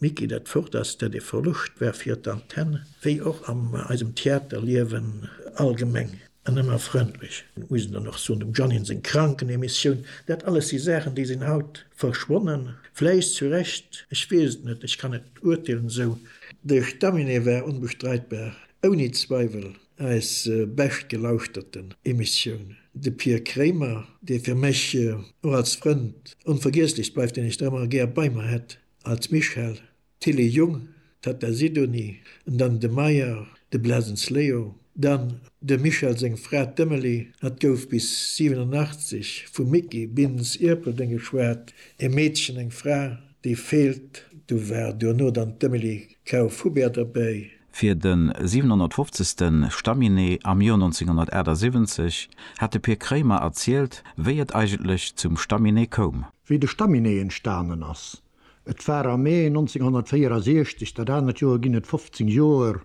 Mee geet et fort, ass dat ee Verloscht war fir d'Antenn, wéi och an eisem Theaterliewen allgemeng. An ëmmer frëndlech, muss een dann och soen, dem Jeannine seng Krankenemissioun, dat alles si Saachen, déi sinn haut verschwonnen. Vläicht zu Recht, ech weess et net, ech kann net urteelen esou. De Staminee war onbestreitbar, ouni Zweiwel, Eis bescht gelauschteten Emissioun. De Pir Kremer, dee fir mech och als Frënd onvergiesslech bleift, deen ech nach ëmmer gär bei mer hätt als Michel, d'Tilly Jung, d'Tatta Sidonie, an dann de Meyer, de Blesens Leo, dann dem Michel seng Fra, d'Emily, hat gouf bis 87 vum Micky Bintz Ierpeldeng geschwat, e Meedchen, eng Fra, déi feelt, du war duerno dann d'Emily Kauf Hubert derbäi. Fir de 750. Stamminé am Joer 1978 hat de Pir Kréimer erzielt, wéi et eigentlech zum Stamminé koum. Wéi de Stamminé entstanen ass. Et war am Mee 1964, dat anert Joer ginn et 15 Joer,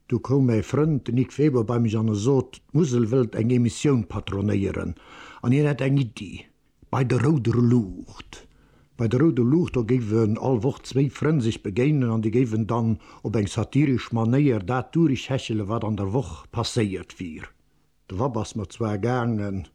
du koum mäi Frënd, de Nic Weber, bei mech an e sot, d'Musel wëllt eng Emissioun patronéieren an hien hätt eng Iddi. Bei der rouder Luucht. Bei der rouder Luucht, do géifen all Woch zwéi Frënn sech begéinen an déi géifen dann op eng satiresch Manéier dat durechhechele wat an der Woch passéiert wier. De Vapp ass mer zwar gaangen,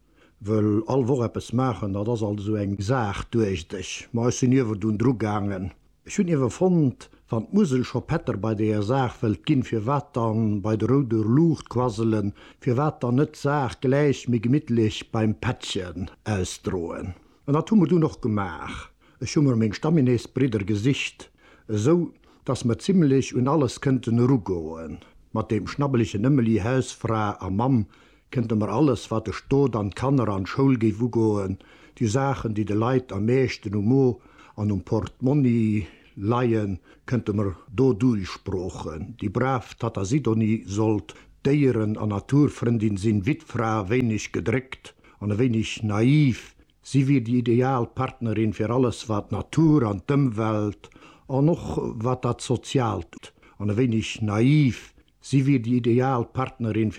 wëll all Woch eppes maachen, dat ass alt esou eng Saach, duecht ech, ma ech sinn ierwerdun drugaangen. Ech hunn iewer fonnt, wann d'Musel scho Pätter bei deeër Saach wëllt ginn, firwat dann bei de rouder Luucht quasselen, firwat dann net d'Saach gläich méi gemittlech beim Pättchen ausdroen? An dat hu mer dunn och gemaach. Ech hu mer meng Stamminesbridder gesicht, esou dass mer zimlech un alles kënnten erugoen, mat deem schnabbelegen Ëmmeli, Hausfra a Mamm, Kënnte mer alles, wat de Stot an d'Kanner an d'Schoul géif ugoen, déi Saachen, déi de Leit am meeschten um Mo an um Portmonni leien, kënnte mer do duichsproochen, déi brav Tatta Sidonie sollt Déieren an Naturfrëndin sinn, Wittfra, e wéineg gedréckt an e wéineg naiv, si wier déi ideal Partnerin fir alles, wat d'Natur an d'Ëmwelt an och wat dat Soziaalt an e wéineg naiv, si wier déi ideal Partnerin fir.